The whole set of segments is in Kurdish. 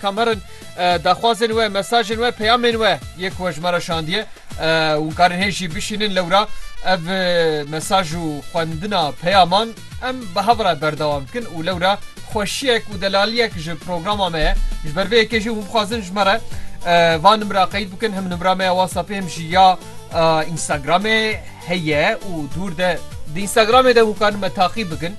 Cameron daxwazên we, mesajên we, peyamên we yê ku we ji me re şandiye hûn karin hê jî bişînin lewra ev mesaj û xwendina peyaman em bi hev re berdewam dikin û lewra xweşiyek û delaliyek ji programa me ye. Ji ber vê yekê jî hûn bixwazin ji me re va nimra qeyd bikin him nimra me ya WhatsAppê him jî ya Instagramê heye û dûr de di Instagramê de hûn karin me taqîb bikin.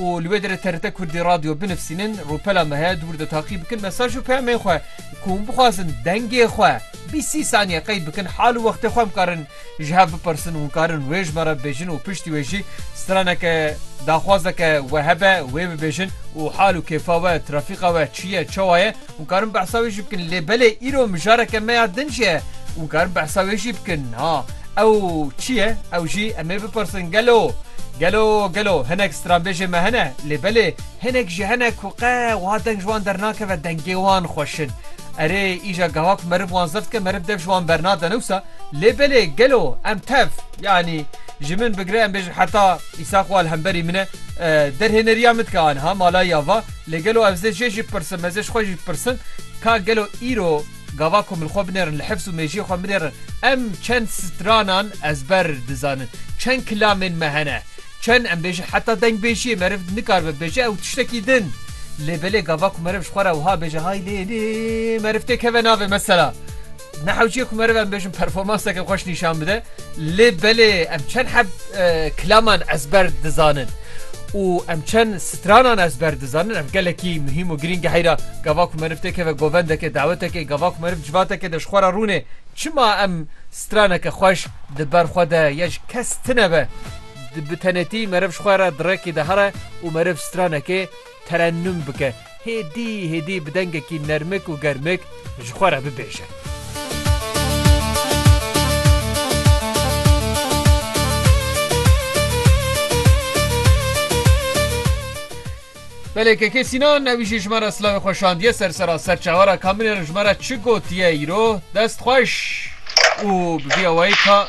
û li wê derê TRT Kurdî Radio binivîsînin, rûpela me heye dûr de taqî bikin mesaj û peyamên xwe ku hûn bixwazin dengê xwe bîst sî saniye qeyd bikin hal û wextê xwe em karin ji hev bipirsin hûn karin wê ji me re bibêjin û piştî wê jî straneke daxwazeke we hebe wê bibêjin û hal û kêfa we trafîqa we çi ye çawa ye Hûn karin behsa wê jî bikin lê belê îro mijareke me ya din jî ye û karin behsa wê jî bikin ha ew çi ye ew jî em ê bipirsin gelo gelo gelo hinek stranbêjê me hene lê belê hinek jî hene ku qe wiha deng ji wan dernakeve dengê wan xweş in erê îja gawa ku meriv wan zeft dike meriv dev ji wan bernade ne wisa lê belê gelo em tev yanî ji min bigire em bêjin heta îsaq wal hemberî min e derhêneriya min dike aniha malayî ava. Lê gelo ev zê jê jî bipirsim, ez ê ji xwe jî bipirsim, ka gelo îro gava ku min xwe binêrin, li hifz û mêjiyê xwe binêrin, em çend stranan ezber dizanin, çend kilamên me hene, çend em bêjin, heta dengbêjiyê meriv nikaribe bêje ew tiştekî din, lê belê gava ku meriv ji xwe re wiha bêje, hay lê lê meriv tê keve navê mesela. Nehewciye ku meriv em bêjin performanseke xweş nîşan bide lê belê em çend heb kilaman ezber dizanin û em çend stranan ezber dizanin ev gelekî muhîm û girîng heyra gava ku meriv têkeve govendeke dawetekê gava ku meriv civateke de ji xwe re rûnê çima em straneke xweş di ber xwe de ya ji kes tinebe bi tenêtî meriv ji xwe re di rekê de here û meriv stranekê Terennum bike, hêdî hêdî bi dengekî nermik û germik ji xwe re bibêje. Belê KK Sînan ewî jî ji me re silavê xwe şandiye ser sera serçavara kamilê re ji me re çi gotiye îro dest xweş û bi vî awayî ka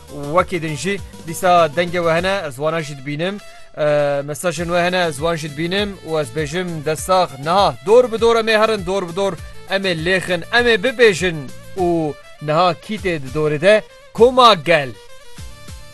Wekî din jî dîsa dengê we hene ez wana jî dibînim. Mesajên we hene ez wan jî dibînim û ez bêjim destax niha dor bi dor emê herin dor bi dor emê lêxin emê bibêjin û niha kîtê di dorê de koma gel.